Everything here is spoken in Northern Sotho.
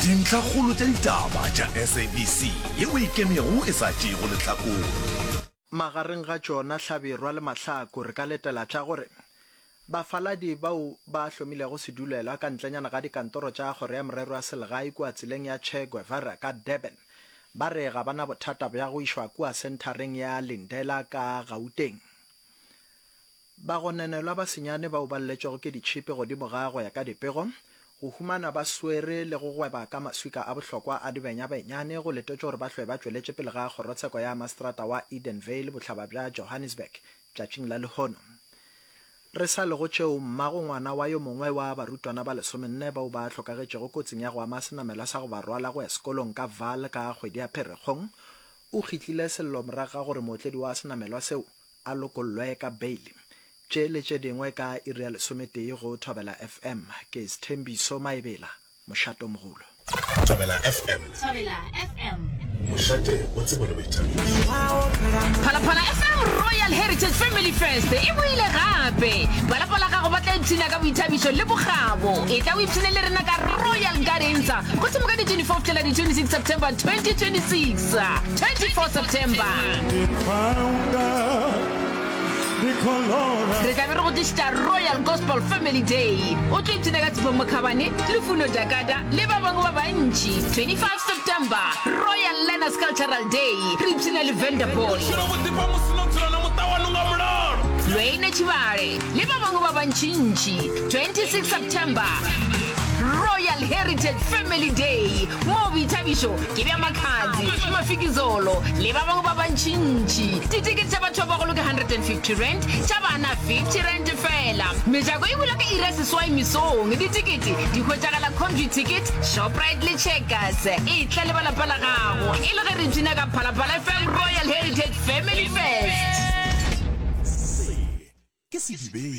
Dintlhakgolo tša ditaba tša SABC ye o e kemego e sa tšeego lehlakore. Magareng ga tšona, hlabirwa le mahlaku, re ka letela tša gore bafaladi bao ba ahlomilego sedulelwa ka ntlenyana ga dikantoro tša Kgoro ya Merero ya Selegae kua tseleng ya Che Guevara ka Durban ba re ga ba na bothata bja go išwa kua senthareng ya Lindela ka Gauteng Bagononelwa ba senyane bao ba lletšwego ke ditšhipi godimo ga go ya ka dipego, go humana ba swere le go gweba ka maswika a bohlokwa a dibenya benyane go letetšwe gore ba hlwe ba tšweletše pele ga kgorotsheko ya maseterata wa Edenvale bohlaba bja Johannesburg tšatšing la lehono. Re sa le go tšeo, mma go ngwana wa yo mongwe wa barutwana ba lesomenne bao ba hlokagetšego kotsing ya go ama senamelwa sa go ba rwala go ya sekolong ka Vaal ka kgwedi ya Pherekgong o kgitlile sello morago ga gore mootledi wa senamelwa seo A lokollwe ka beili. Tše le tše dingwe ka iri ya lesometee go Thobela FM. Ke Sthembiso Maebela, Mošate Mogolo. Thobela FM. Thobela FM. Mošate o tsebo le boithabišo. Phalaphala FM Royal Heritage Family Fest e boile gape. Balapa la gago ba tla ipshina ka boithabišo le bokgabo. E tla o ipshine le rena ka Royal Gardens gohle mo ka di 24 fihlela di 26 September 2026. Sa 24 September. Re tla be re go tlišitša Royal Gospel Family Day. O tlo ipshina ka Tshepho Mokhabane, Lufuno Jakata le ba bangwe ba bantši. 25 September, Royal Learners Cultural Day. Re ipshina le Vanderpool. Lweine Tšhibale le ba bangwe ba bantšintši. 26 September, Royal Heritage Family Day moo boithabišo Ke bja Makhadzi, Mafikizolo le ba bangwe ba bantšintši. Ditikete tša batho ba bagolo ke R150, tša bana R50 fela. Mejako e bula ka iri ya seswai mesong. Ditikete di hwetšagala Comview Ticket, Shoprite le Checkers. Etla le ba lapa la gago e le ge re bina ka Phalaphala FM Royal Heritage Family Fest. Se ke sedibeng.